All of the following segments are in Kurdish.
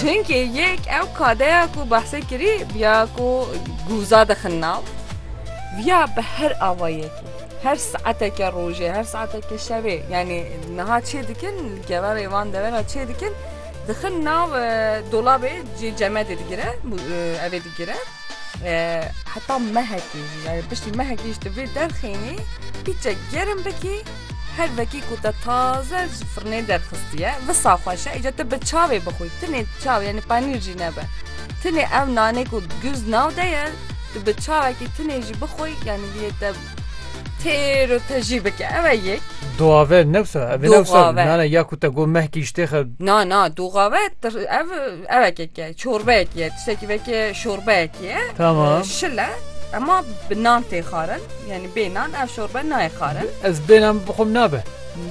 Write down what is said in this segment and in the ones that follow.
Çinkî yek ew kadeya ku behsê kirî ya ku gûza dixin nav ya bi her awayekî her saeteke rojê her saeteke şevê yanî niha çê dikin keverê van devera çê dikin dixin nav dolabê cê cemedê digire evê digire heta mehekî jî yanî piştî mehekî jî tu vê derxînî pîçek gerim bikî Her vekî ku te taze ji firnê derxistiye, visa xweş e, îca te bi çavê bixwî, tinê çav yanî panîr jî nebe. Tinê ew nanê ku guz nav de ye, tu bi çavekî tinê jî bixwî yanî lê te têr û tejî bike. Ev e yek. Duave ne wisa, ev ne wisa. Duave. Nana ya ku te got mehkî îştê xe. Na na duave tir- ev ev ekek ye, çorbeyek ye, tiştekî vekê şorbeyek ye. Tamam. Şil e, ema bi nan tê xwarin. Yani bê nan ev şorbe nayê xarin. Ez bê nan bixwim nabe.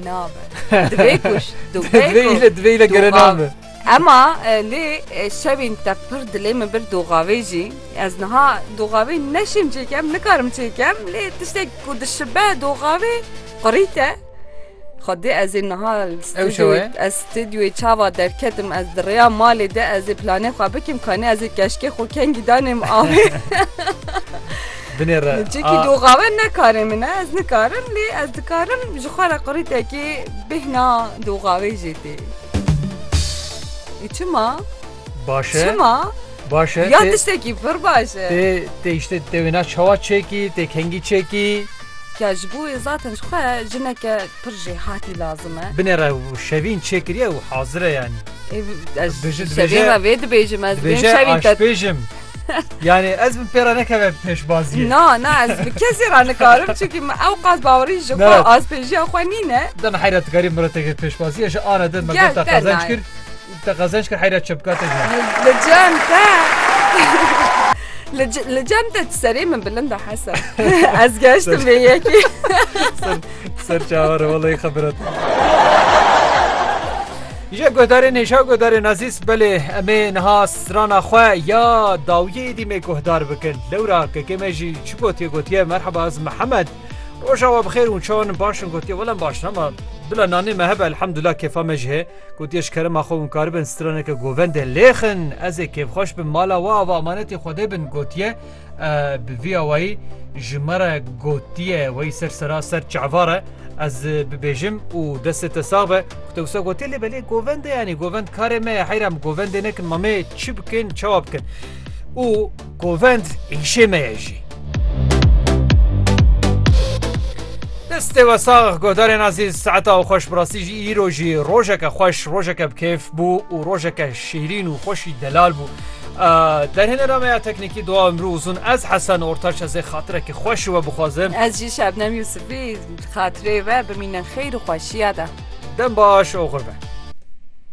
Nabe. Divê kuş. Divê ile divê ile gere nabe. Ema e, lê e, şevên te pir dilê min bir doxavê jî ez niha doxavê neşim çêkem nikarim çêkem lê tiştek ku dişibe doxavê qurîte Xwedê ez ê niha ez stûdyoyê çawa derketim ez di rêya malê de ez ê planê xwe bikim kanê ez ê keşkê xwe kengî danê min avê binêre Çekî doxawe nekarê min e ez nikarim lê ez dikarim ji xwe re qurîtekê bêhna doxavê jê tê. Çima? Baş e. Çima? Baş e. Ya tiştekî pir baş e. Tê tê îşte tê wêna çawa çêkî, tê kengî çêkî. Ya ji bo wê zaten ji xwe jineke pir jê hatî lazim e. Binê re şevîn çêkiriye û hazir e yanî. Ez şevîn re vê dibêjim ez bê şevîn te. Aşpêjim. Yani ez bi pêra nekeve pêşbaziyê. Na, na ez bi kesê ra nikarim çünkü ew qas bawerî ji xwe azpêjiya xwe nîne. Dem heyretkari mireteke pêşbaziyê ji ana din me gota qazanç kir. Te qezenç kir heyra çi bikate ji wan. Li cem te Li cem te serê min bilind e hesen. Ez geştim vê yekê. Ser çawa re welay xebirat. Jê guhdarê nêşa guhdarê nazîs belê em ê niha strana xwe ya dawiyê dî me guhdar bikin. Lewra kekê me jî çi gotiye gotiye merheba ez Mihemed. Roja we bixêr û çawan baş in gotiye welem baş in ama bila nanê me hebe elhamdullah kêfa me jî hê. Gotiye ji kerema xwe hûn karibin straneke govendê lêxin, ez ê kêfxweş bim mala we ava emanetê xwedê bin gotiye bi vî awayî ji me re gotiye wey ser sera ser çevar e ez bibêjim û destê te sax be ku te wisa gotiye lê belê govendê yanî govend karê me ye heyra em govendê nekin mamê çi bikin çawa bikin û Kovend îşê me ye jî. Destê we sax godarên azîz saeta û xweş bi rastî jî îro jî rojeke xweş rojeke bi kêf bû û rojeke şîrîn û xweşî delal bû. Derhênera me ya teknîkî doa imrû uzun ez hesen ortaç ez ê xatirekî xweş we bixwazim. Ez jî Şebnem Yûsifî xatirê we bimîne xeyr û xweşîya de. Dem baş oxir be.